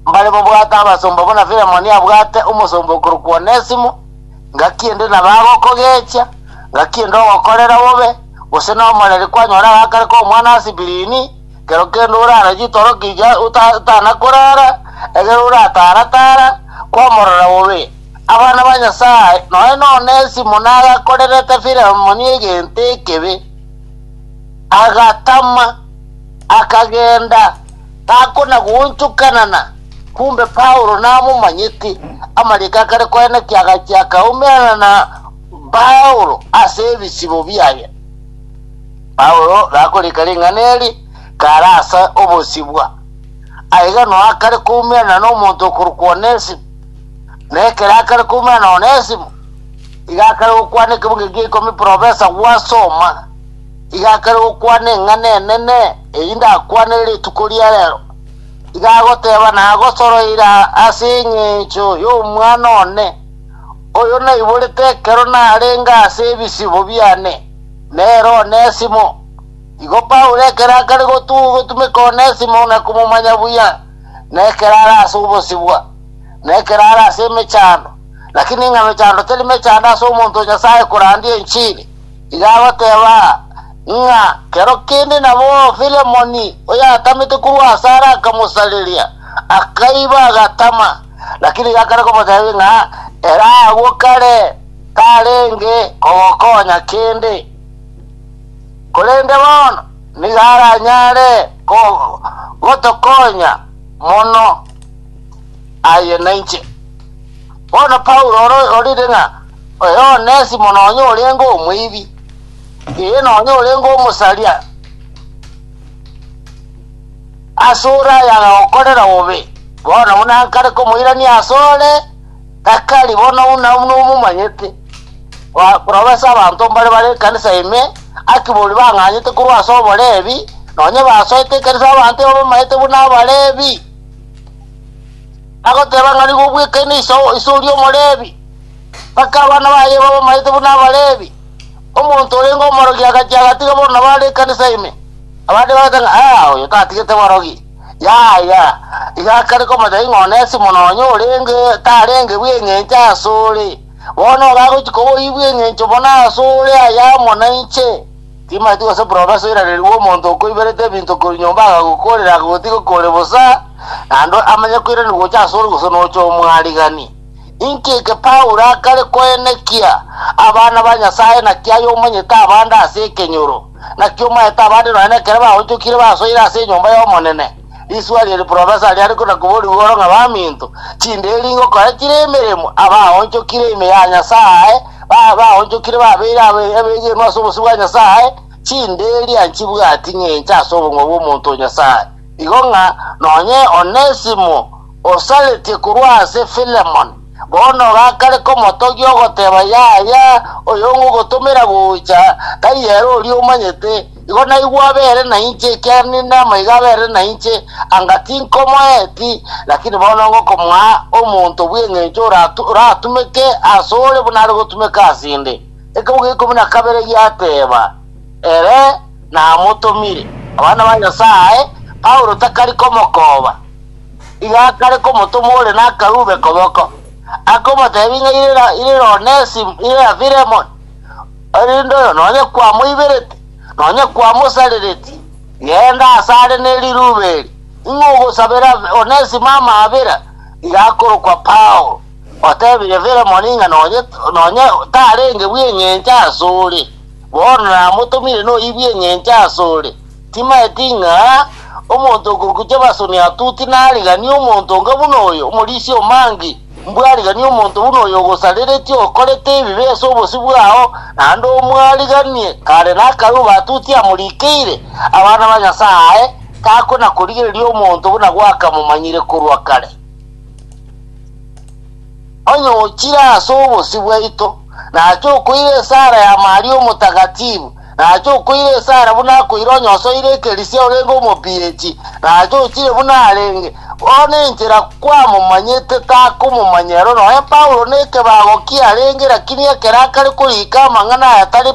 mbare bobwate abasomba buna Filemoni abwate omosomba okorokwa Onesimo, ngaki ende nabagokogechia, ngaki ende ogokorera bobe, gose nomoreri kwanyora agakare k'omwana ase birini, kero kende orare chitorokia ota- otanakorara, egere oratara-tara kwamorora bobe. Abana ba Nyasae, nonya na Onesimo nagakorerete Filemoni egento ekebe, agatama, akagenda, Takona goonchokanana, kumbe Paulo namomanyete. Amariiko akare koenekia agachia akaumerana na Paulo ase ebisibo biaye. Paulo gakorika ring'ana eri kare ase obosibwa. Aiganwa akare koumerana n'omonto okorokwa Onesimo, na ekero akare koumerana na Onesimo, iga akare gokwana ekebunga egia ikomi profesa gwasoma. Iga akare gokwana eng'ana enene eyio ndakwanere rituko ria rero. Iga agoteba, Nagosoroire ase engencho y'omwana one, oyo naiborete ekero narenge ase ebisibo biane, nere Onesimo. Igo Paulo ekero akare gotumeka Onesimo na komomanya buya, na ekero are ase obosibwa, na ekero are ase emechando, (lakini ng'a mechando teri mechando ase omonto o Nyasae korandia enchili), Iga agoteba, ng'a kero kende nabo Filemoni oyatamete korwa asare akamosareria, akaiba agatama. Lakini gakare komotebia ng'a ere agwo kare tarenge kogokonya kende, korende bono nigo aranyare gotokonya mono aye nainche. Bono Paulo ore ororire ng'a oyo Onesimo nonya orenge omoibi, ee, nonya orenge omosaria asore aya agagokorera bobe, bono buna nkare komoirania asore, takari bono buna buna omomanyete. Ba- Korobesa abanto mbare bare ekanisa ime, akibori bang'anyete korwa ase oborebi, nonya basoete ekanisa abanto babamayete buna abarebi. Agoteba ng'a nigo obwekaine iso oria Omolevi, mpaka abana baye babe omanyete buna Abalevi. Omonto orenge omorogi agachia agatiga bono bare ekanisa ime, abande bagoteba ng'a, Aa, oyo tatigete borogi. Yaya, iga akare komanya ng'a Onesimo nonya orenge tarenge bw'engencho asore, bono nigo agochia koba oibw'engencho mono asore aye amo nainche. Timaeti gose profesa oiraneria bw'omonto okoiberete ebinto korwa nyomba agagokoorera akagotiga kore bosa, naende amanye koiraneria gocha asore gose nocha omwarigani. Inki eke Paulo akare koenekia abana ba Nyasae naki aye omanyete abande ase ekenyoro? Naki omaete abande nonya nekero baonchokire basoire ase enyomba y'Omonene? Risuaria ri profesa riare na koborigwa oro ng'a baminto, chinderi ngokoretire emeremo, abaonchokire ime ya Nyasae, ba- baonchokire babeire abe- abegenwa ase obosio bwa Nyasae, chinderi anchibwati ng'encha ase obong'wa bw'omonto o Nyasae. Igo ng'a nonye Onesimo osaretie korwa ase Filemon, bono gakare komotogia ogoteba, Yaya, oyongogotomera gocha, tari ere oria omanyete, Igo naigwe abere nainche, ekiagera ninde amaiga abere nainche, anga tinkomoeti, lakini bono ngokomoa omonto bw'engencho oratu- oratumeke asore buna are gotumeka asende. Ekemo gia ikomi na kabere giateba, Ere namotomire. Abana ba Nyasae, Paulo takari komokoba, iga akare komotoma ore nakarube koboko, akomotebia ng'a irera- irera Onesim- irera Filemon, Erinde oyo nonye kwamoibereti, nonye kwamosarereti, genda asare ne riruba eri, ing'o ogosabera Onesimo amaabera? Iga akorokwa Paulo, otebire Filemoni ng'a nonye nonye tarenge bw'engencho asore, bono namotomire noyi bw'engencho asore. Timaeti ng'a omonto okorukia basoni atuti nariganie omonto onga buna oyo, omorisia omange. Mbwariganie omonto buna oyo ogosareretie okorete ebibe ase obosio bwao, naende omwariganie kare nakarue batuti amorikeire abana ba Nyasae, takona korigereria omonto buna gwakamomanyire korwa kare. Onye ochire ase obosio bwaito, nache okoira esara ya Maria Omotagatifu, na ache okoira esara buna akoira onye osoire ekerisia orenge omobieti, na ache ochire buna arenge. Bono enchera kwamomanyete takomomanya ero noe Paulo nekebago kiarenge, lakini ekero akare korika amang'ana aya tari,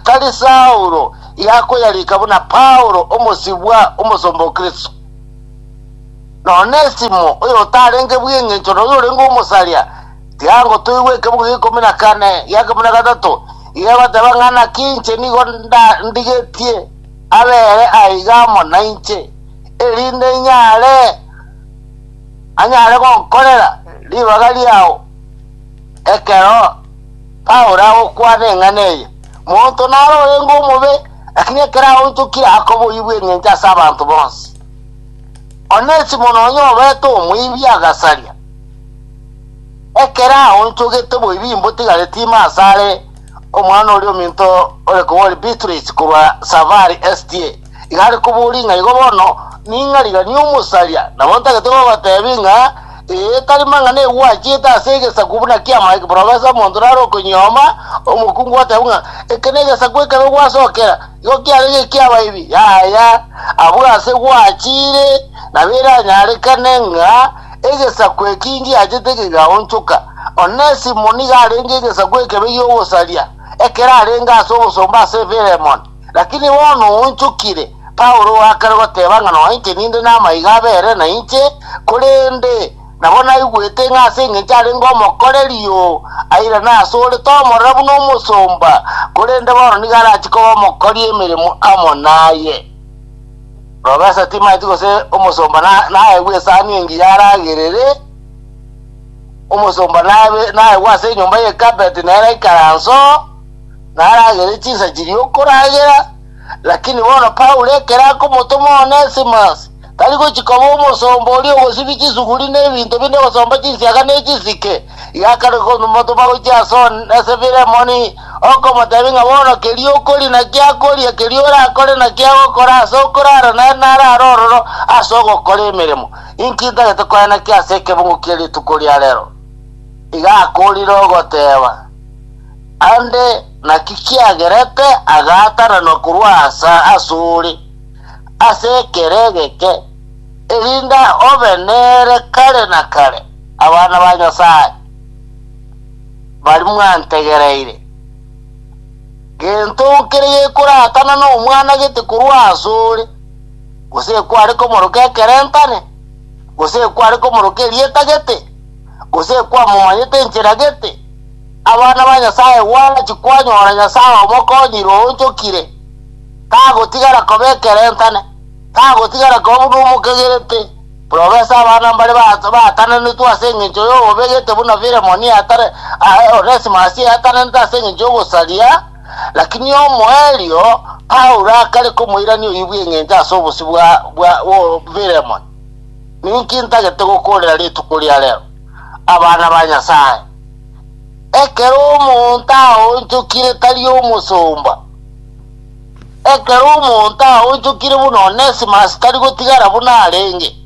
tari Saulo, igakoyarika buna Paulo, omosibwa, omosomba o Kristo. Na Onesimo, oyotarenge bw'engencho na oyorenge omosaria, Kiango toigwe ekebugo gia ikomi na kane gia kemo na gatato, iga egoteba ng'a naki inche nigo nda- ndigetie abere aiga amo nainche, erinde inyare anyare gonkorera ribaga riao ekero Paulo agokwana eng'ana eye. Monto naro orenge omobe, lakini ekero aonchokire akoboyigwa engencho ase abanto bonsi. Onesimo nonya obete omoibi agasaria. Ekero aonchogete boibimbo tigari tima asare omwana oria ominto ore kobori Beatrice korwa Safari SDA iga are koboria ng'a igo bono ning'a rigania omosaria nabo ntagete gogotebi ng'a ee tari mang'ana egwachiete ase egesaku buna kia Mike Professor omonto nare okonyioma omokungu gotebi ng'a eke negesaku ekebe gwasokera igo kiare gekia abaibi yaya abwo ase gwachire nabo eranyarekane ng'a Egesaku eki ngiachete kegaonchoka. Onesimo nigo arenge egesaku ekebe gi'ogosaria, ekero arenge ase obosomba ase Filemoni. Lakini bono oonchokire, Paulo oakare goteba ng'a noinche ninde namaiga abere nainche, korende nabo naigwete ng'a ase engencho arenge omokorerio, airane asore tomorora buna omosomba, korende bono nigo arache koba omokori emeremo amo naye. Robe ase timaati gose omosomba na- naegwe esani engiya aragerere, omosomba nabe- naegwe ase enyomba y'ekabeti nere aikare anso, naragerere chinsa chiria okoragera. Lakini bono Paulo ekero akomotoma Onesimus, tari gochia koba omosomba oria ogosibi chisuguri na ebinto binde gosomba chinsiaga ne chisike, Yakarwa komotoma gochia ase one, ase Filemoni, okomotebia ng'a bono keria okoria na kiakoria, keria orakore na kiagokora ase okorara nere nare are ororo ase ogokora emeremo. Inki ntagete koenekia ase ekebungo kie rituko ria rero? Iga akoorire ogoteba, Ande, naki kiagerete agaatananwa korwa asa asore ase ekero egeke, erinde obe nere kare na kare. Abana ba Nyasae, baria mwantegereire, gento kere gekorakana nomwana gete korwa asore, gose ekware komoroka ekerentane, gose ekware komoroka erieta gete, gose ekwamomanyete enchera gete, abana ba Nyasae gwachi kwanyora Nyasae omokonyire oonchokire, tagotigara koba ekerentane, tagotigara koba buna omokegerete, Roba ase abana mbare baatananetwe ase engencho y'obobe, gete buna Filemoni atare aa, Onesimasi eatananete ase engencho y'ogosaria. Lakini omoerio Paulo akare komoirania oyio bw'engencho ase obosio bwa bwa Filemoni. Ninki ntagete gokoorera rituko ria rero, abana ba Nyasae? Ekero omonto aonchokire tari omosomba. Ekero omonto aonchokire buna Onesimasi tari gotigara buna arenge,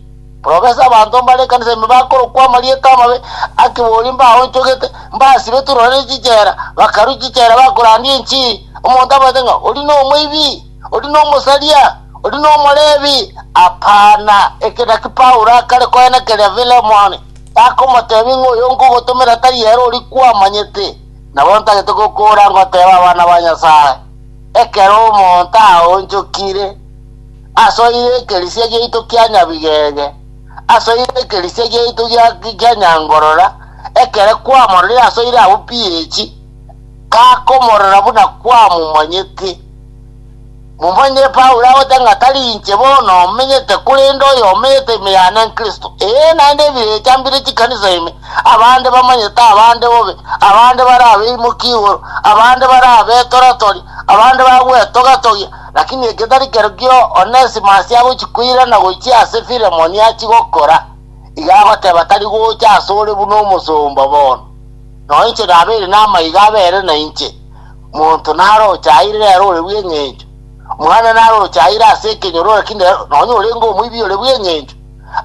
porobesa abanto mbare ekanisa ime bakorokwa amarieta amabe, akibori mbaonchogete, mbasibetwe rore ne chichera, bakarue chichera bakorandia enchiri, omonto abaete ng'a ori nomoibi, ori nomosaria, ori nomorebi. Apana, eke naki Paulo akare koenekeria Filemoni, takomotebia ng'a oyo nkogotomera tari ere oria kwamanyete, nabo ntagete gokoora ngoteeba abana ba Nyasae. Ekero omonto aonchokire, asoire ekerisia giaito kia nyabigege, asoire ekerisia giaito gia gia nyangorora, ekero kwamororire asoire abwo pi echi, kakomorora buna kwamomanyete. Momanyire Paulo agote ng'a tari inche bono omenyete, korende oyo omenyete ime yane n'Kristo, ee, naende ebirecha mbire chikanisa ime, Abande bamanyete abande bobe, abande barabeimokie igoro, abande barabetoratori, abande bagwetogatogia. Lakini egetari kerokio Onesimus agochia koirana gochia ase Filemoni achie gokora, iga agoteba tari gocha asore buna omosomba bono. Nao inche nabeire namaiga abere nainche. Monto naroche aire rero ore bw'engencho, mwana naroche aire ase ekenyoro, lakini rero nonye orenge omoibi ore bw'engencho.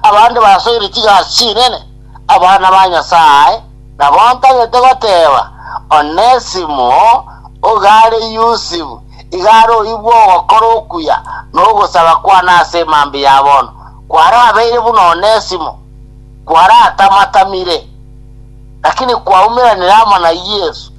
Abande basoire chigasi chinene, Abana ba Nyasae nabontagete goteeba, Onesimo, oigare Yusifu, igare oibwe ogokora okuya nogosaba kwane ase emambia ya bono, kwarabeire buna Onesimo, kwaratamatamire, lakini kwaumeranire amo na Yesu.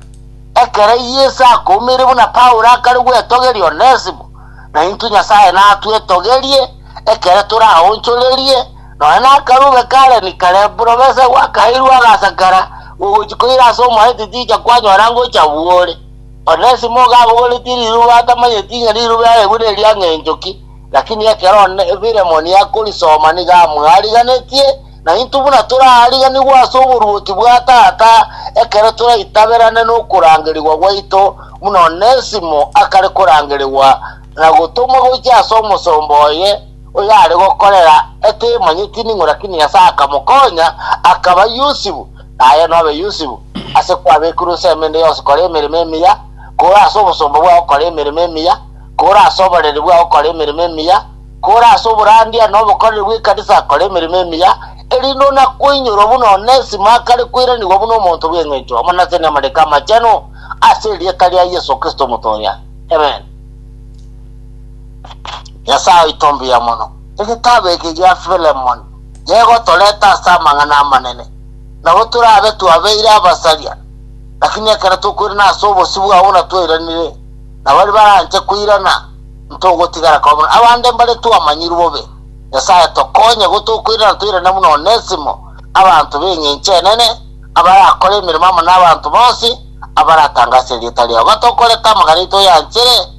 Ekero Yesu akoumeire buna Paulo akare gwetogeria Onesimo, naintwe Nyasae natwetogerie ekero toraonchorerie Nonya nakarube k'Aleni Kalebu nobese gwakaeirwe agasakera gogochia koira ase omoreti ticha kwanyora ngocha bwore. Onesimo ogabogoretie riruba atamanyeti ng'a riruba earegwe neria ng'encho ki, lakini ekero Filemoni akorisoma nigo amwariganetie, na intwe buna torariganigwe ase oboruoti bwa Tata ekero toraitaberane nokorangerigwa gwaito, buna Onesimo akare korangerigwa na gotomwa gochia ase omosomba oye. oyare gokorera etemanyeti ning'o lakini Nyasae akamokonya, akaba Yusufu, na aye nobe Yusufu, ase kwabekirwe ensemo ende yonsi kora emeremo emiya, kore ase obosomba bwao kora emeremo emiya, kore ase oboreri bwao kora emeremo emiya, kore ase oborandia na obokoreri bw'ekanisa kora emeremo emiya, erinde onakoinyorwa buna one isimo akare koiranigwa buna omonto bw'engencho, amo nase namariko amachenu, ase erieta ria Yesu Kristo Omotoria. Amen. Nyasae oito mbuya mono, egetabu eke gia Filemoni negotoreta ase amang'ana amanene. Nabo torabe twabeire abasaria, lakini ekero tokoirana ase obosio bwabo buna twairanire, na baria baranche koirana ntogotigara koba mono. Abande mbare twamanyirwe bobe. Nyasae tokonye go tokoirana toirane buna Onesimo, abanto b'eng'encho enene, abarakore emeremo amo n'abanto bonsi abaratangase erieta riao. Batokorete amang'ana aito yanchere,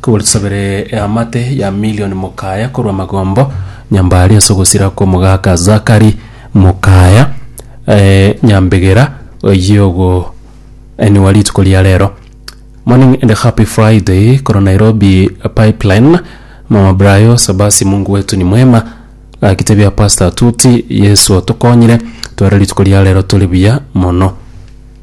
Kobua tusabere eamate ya milioni Mukaya korwa magombo Nyambari ase ogosira kw'omogaka Zakari Mukaya Nyambegera oyio ogo eniwa rituko ria rero Morning and happy Friday korwa Nairobi pipeline Mama Brayo Sabasi Mungu wetu ni mwema Gaki tebia Pastor Tuti Yesu otokonyire tware rituko ria rero tore buya mono.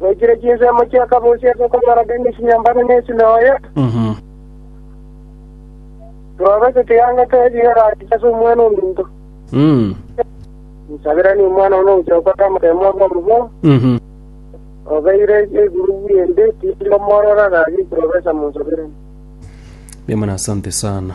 Goikire chinsemo chi'akabosi ase okomoraka emesinyambare ne esinagogi, Kloropasi tiyangete ebibe rache ase Omwana-o-monto. Nsabiranie Omwana one ogochia gokora amategeko ore omobe, obeire egurugu ri'ende, tindi komorora, gaki Kloropasi amonsaberanie. Bwimana asante sana.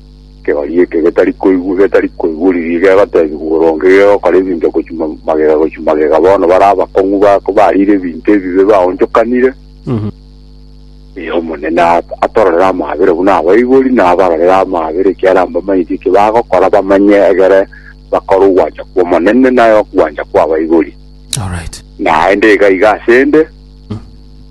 Ekegoria eke getari koigwa getari koigwa riiri gegoteebigwa boronge gegokora ebinto gochia ma- magega gochia magega bono bare abakong'u bako bariire ebinto ebibe baonchokanire ee omonene at- atororere amaabera buna abaibori na abarorere amaabera ekiagera mbamanyeti eki bagokora bamanye egere bakore ogwancha kw'omonene naye okwancha kw'abaibori Alright. naende iga iga asende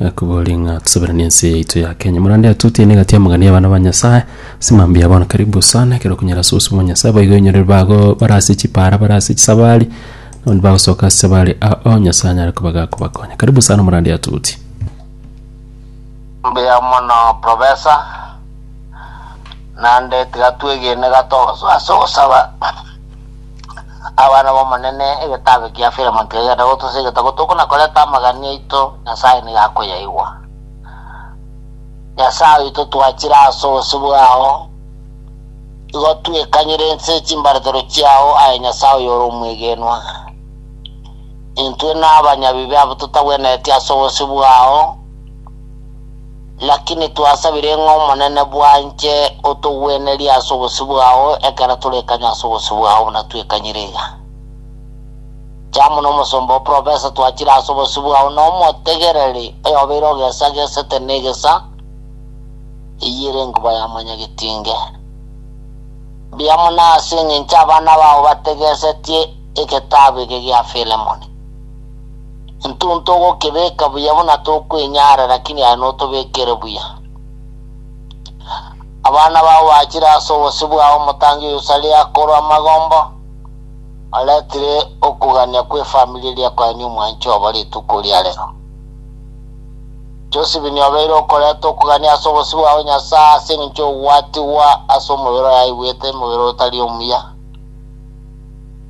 Akobori ng'a tosaberanie ense yaito ya Kenya. Morande atutie na egati amang'ana ya abana ba Nyasaye. Ase mambia bono karibu sana ekero okonyara ase obosio bwa Nyasaye boigo onyorire bago bare ase chipara bare ase chisabari nabondi bagosoka ase chisabari ao Nyasaye anyare koba gakobakonya. Karibu sana morande atuti. Mbuya mono professor, naende tiga twegene gato ase ogosaba. Abana b'Omonene, egetabe kia Filemon kegenda gotusa egetabu tokona koreta amagani aito, Nyasae nigo akoyaigwa. Nyasae oito twachire ase obosio bwao, igo twekanyire inse chimbaretero chiao, aye Nyasae oyore omwegenwa. Intwe nabanyabibe abwo totagwenereti ase obosio bwao, Lakini twasabire ng'a Omonene bwanche otogwenerie ase obosio bwao ekero torekanywa ase obosio bwao buna twekanyire iga. Inche amo nomosomba o Profesa twachire ase obosio bwao nomotegereri oyobeire ogesagesete negesa, eyio ere enkuba ya Mwanyagetinge. Mbuya mono ase engencho abana bao bategesetie egetabu eke gia Filemoni. Intwe ntogokebeka buya buna tokwenyara, lakini aye notobekere buya. Abana bao bachire ase obosio bwao omotangi o Yerusalemu akorwa amagombo, oretire okogania kw'efamiri eria koyania omwancho obo rituko ria rero. Josibini obeire okoreta okogania ase obosio bwao Nyasae ase engencho y'ogwatigwa ase omobere oyaigwete, emobere otari omuya.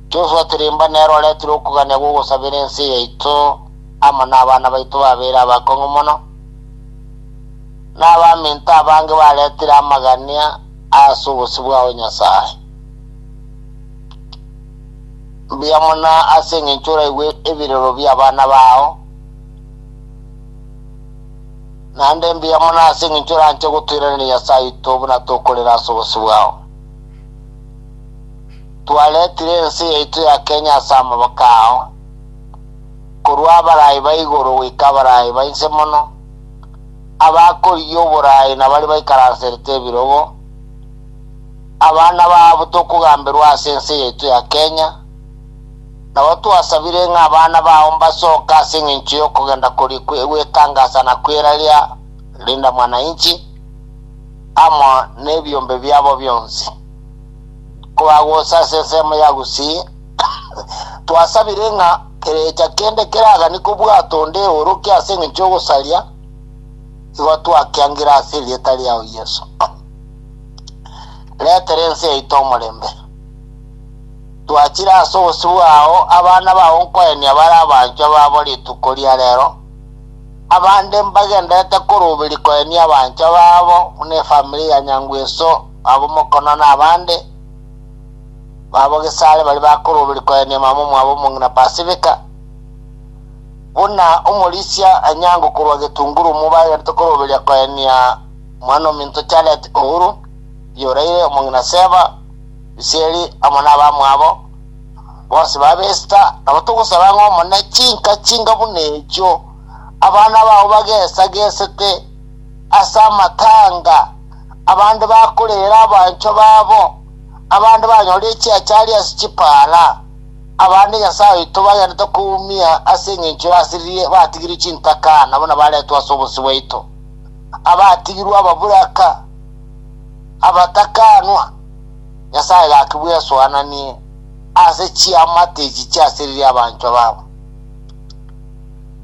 Joshua Tirimba nere oretire okogania gw'ogosabera ense yaito amo nabana baito babere abakong'u mono, na abaminto abange baretire amagania ase obosio bwao Nyasae. Mbuya mono ase engencho oraigwe ebirero bi'abana bao, naende mbuya mono ase engencho oranche gotoiraneria Nyasae oito buna tokorera ase obosio bwao. Twaretire ense yaito ya Kenya ase amaboko ao, korwa abarai ba igoro goika abarai ba inse mono, abakorigia oborai na baria baikaranserete ebirogo. Abana babo tokogamberwa ase ense yaito ya Kenya, nabo twasabire ng'a abana bao mbasoke ase engencho y'okogenda koria kwe- gwetangasa na kweraria Linda Mwananchi, amo nebiombe biabo bionsi. Kobagosa ase ensemo ya Gusii, twasabire ng'a kerecha kende keragani kobwato onde eoroke ase engencho y'ogosaria, igo twakiangire ase erieta riao Yeso. Retera ense yaito omorembe. Twachire ase obosio bwao abana bao nkoenia bare abanchwa babo rituko ria rero. Abande mbagenderete koroberia koenia abanchwa babo buna efamiri ya Nyangweso, abwo Mokono na abande babo Gesare baria bakoroberia koenia mama omwabo omong'ina Pasifika, buna omorisia Anyango korwa Gitunguru omo bagenderete koroberia koenia mwan'ominto Charlette Uhuru, Bioraire, omong'ina Seva, Biseri amo nabamwabo. bonsi babesita, nabo togosaba ng'a omone chinka chinga buna echio abana bao bagesagesete ase amatanga, abande bakorera abanchwa babo, abande banyore echiachari ase chipaara, abande Nyasae oito bagenete koumia ase engencho y'asiririe batigirie chintaka nabo nabaretwe ase obonsi bwaito, abatigirwe ababuraka, abatakanwa, Nyasae gaki bwesoananie ase chiamate echi chiasiririe abanchwa babo.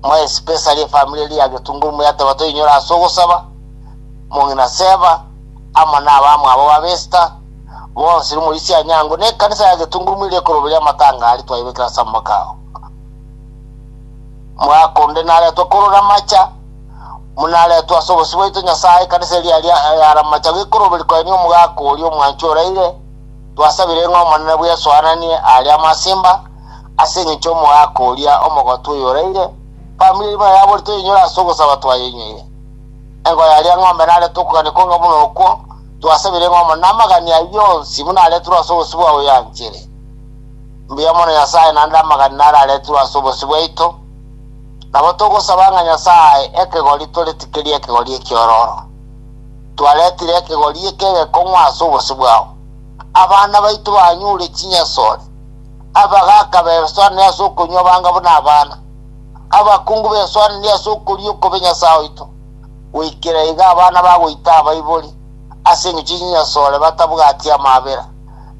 More especially efamiri eria ya Getunguru moyateba toinyore ase ogosaba, mong'ina Seva, amo na abamwabo ba Vesta, bonsi rimu risia Anyango, na ekanisa ya Getunguru moire ekoroberia amatanga aria twaibekire ase amaboko ao. Mwaka onde naretwe korora amacha. Monaretwe ase obosio bwaito Nyasae, ekanisa eria eria earamacha gekoroberi koenia omogaka oria omwanchwa oraire, twasabire ng'a Omonene bwesoananie aria amasimba ase engencho y'omogaka oria omogotu oyo oraire, famiri erimo yabo ritoyenyore ase ogosaba twayenyoire. Engo yaria ng'ombe narete okogania konge buna okwo, twasabire ng'a Omonene amagani ayio onsi buna aretirwe ase obosio bwa oyoyanchere. Mbuya mono Nyasae naende amagani naro aretirwe ase obosio bwaito. Nabo togosaba ng'a Nyasae ae ekegori toretigerie ekegori ekiororo. Twaretire ekegori eke egekong'u ase obosio bwao. Abana baito banyure chinyasore, abagaaka besoanere ase okonywa banga buna abana, abakungu besoanere ase okoria okobe Nyasae oito, goikera iga abana bagoita abaibori ase eng'encho chinyasore batabwati amaabera.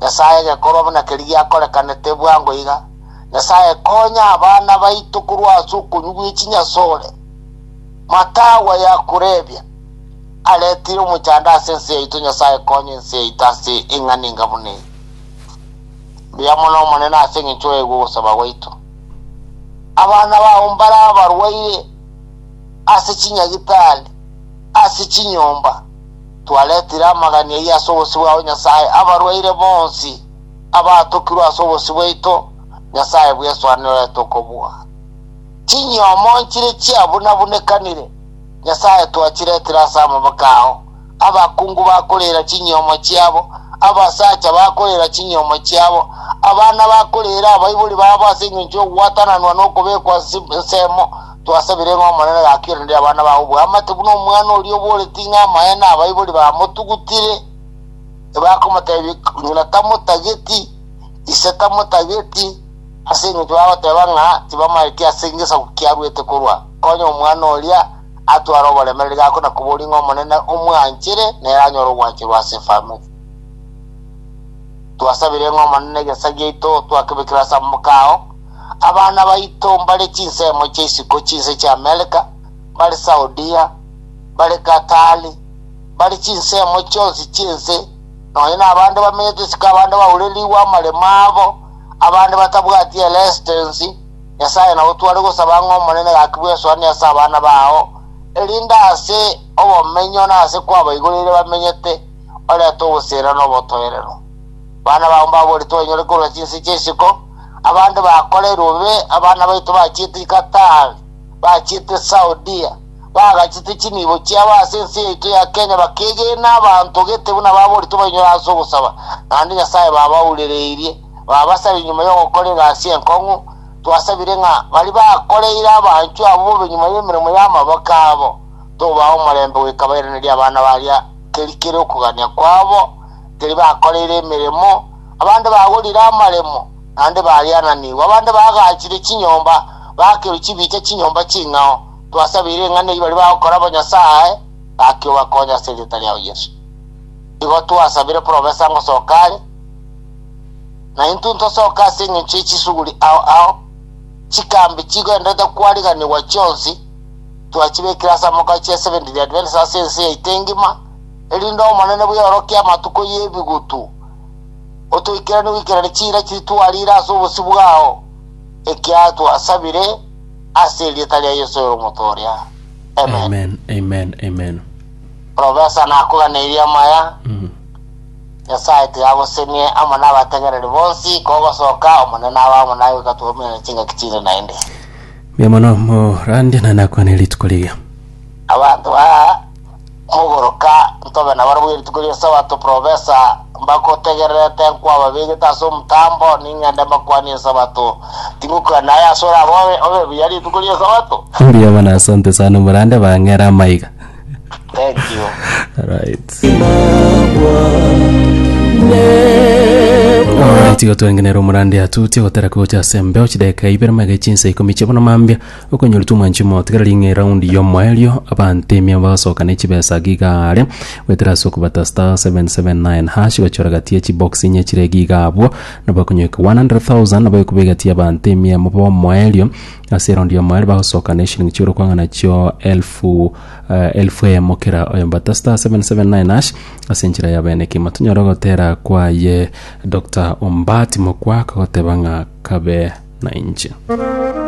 Nyasae egekorwa buna keria giakorekanete bwango iga, Nyasae, konya abana baito korwa ase okonywa gwe chinyasore. Matagwa yakorebia, Aretire omochando ase ense yaito, Nyasae, konya ense yaito ase eng'ana enga buna eye. Mbuya mono Omonene ase engencho yaigwa ogosaba gwaito. Abana bao mbare abarwaire ase chinyagitari, ase chinyomba. Twaretire amagani ayio ase obosio bwao, Nyasae, abarwaire bonsi. abaatokirwe ase obosio bwaito, Nyasae bweswanerete okobua. Chinyiomo nchire chiabunabunekanire, Nyasae twachiretire ase amaboko ao. Abakungu bakoreera chinyiomo chiabo, abasacha bakoreera chinyiomo chiabo, abana bakoreera abaibori babo ase engencho y'ogwatananwa na okobekwa ase ensemo. Twasabire ng'a Omonene gakiranere abana bao oboamate buna omwana oria oboreti ng'a amaene abaibori bamotugutire. Tibakomotebia, Nyina tamotageti, ise tamotageti, ase engencho bagoteba ng'a tibamaeti ase egesaku kiaruete korwa. Konya omwana oria atware oboremereri gako na koboria ng'a Omonene omwanchere, nere anyore ogwancherwa ase efalme. Twasabire ng'a Omonene egesaku giaito twakebekire ase amaboko ao. Abana baito mbare chinsemo chia isiko chinse chi'Amereka, mbare Saudia, mbare Katari, bare chinsemo chionsi chi'ense, nonya nabande bamenyete isiko, abande baurerigwe amaremo abo, abande batabwati ere esitensi, Nyasae nao tware gosaba ng'a Omonene gaki bw'esoani ase abana bao, erinde ase obomenyo na ase kwabaigoreire bamenyete, orete obosena na obotoerero. Abana bao mbaborete bainyore korwa chinse chia isiko, abande bakorerwe bobe, abana baito bachiete Qatar, bachiete Saudia, bagachete chinibo chiabo ase ense yaito ya Kenya bakeegena abanto gete buna baboretwe bainyore ase ogosaba, naende Nyasae babaurereirie. Babasabire nyuma y'ogokora egasi enkong'u, twasabire ng'a baria bakoreire abanchwa abwo bobe nyuma y'emeremo y'amaboko abo, tobaa omorembe goika bairanerie abana baria keri kere okogania kwabo, teri bakoreire emeremo, abande bagorire amaremo, naende bariananigwe, abande bagachire chinyomba, bakerwa chibicha chinyomba ching'ao, Twasabeire ng'a neibari bagokora bo Nyasae gaki obakonye ase erieta riao Yeso. Igo twasabire profesa ngosoka are, na intwe ntosoke ase engencho ye chisuguri ao ao, chikambi chigoendete kwariganigwa chionsi twachibekire ase amoka chia Seventh Day Adventist ase ense yaito engima, erinde Omonene bw'eorokia amatuko y'ebigutu otoikeranie goikerania chiira chiria twarire ase obosio bwao, ekiagera twasabire Ase erieta ria Yeso ore omoto oria. Amen. Amen. Amen. Amen. Professor nakoganeirie amaya. Mm. Nyasaye tigagosemie amo nabategereri bonsi kogosoka omonene aba amo naye goika twominane chingaki chinde naende. Mia mono morande na nakwane rituko riga. Abanto ba Mogoroka, ntobe nabarabwo rituko ri'Esabato, Profesa, mbagotegererete nkwababegete ase omotambo, ning'ende mbakwanie Esabato. Tingokwana aye ase orabe obe obe buya rituko ri'Esabato. Mbuya mono asante sana omorande bang'ere amaiga Thank you. alright alright igo twengenera omorande atuti ogotera kogocha ase mbeo chidakika ibere magaiga chinsa ikomi chiabona mambia Okonyoritwe omwanchimi oo, tiga ring'o eraundi y'omoerio, abanto emia bagosoka ne chibesa age igare, goetera ase okobata star 779#, gochora gati ye chibox inye chire ege iga abwo, nabo ekonyoika 100,000, nabo ekube egati y'abanto emia mobe omoerio, ase eraundi y'omoerio bagosoka ne eshilingi chi'orokwang'ana chio elfu eh, elfu eyemo kera oyo. Mbata star 779#, ase enchera ya bene kimo. Tonyore ogotera kwaye Doctor Ombaati mokwa akagoteba ng'a kabe nainche.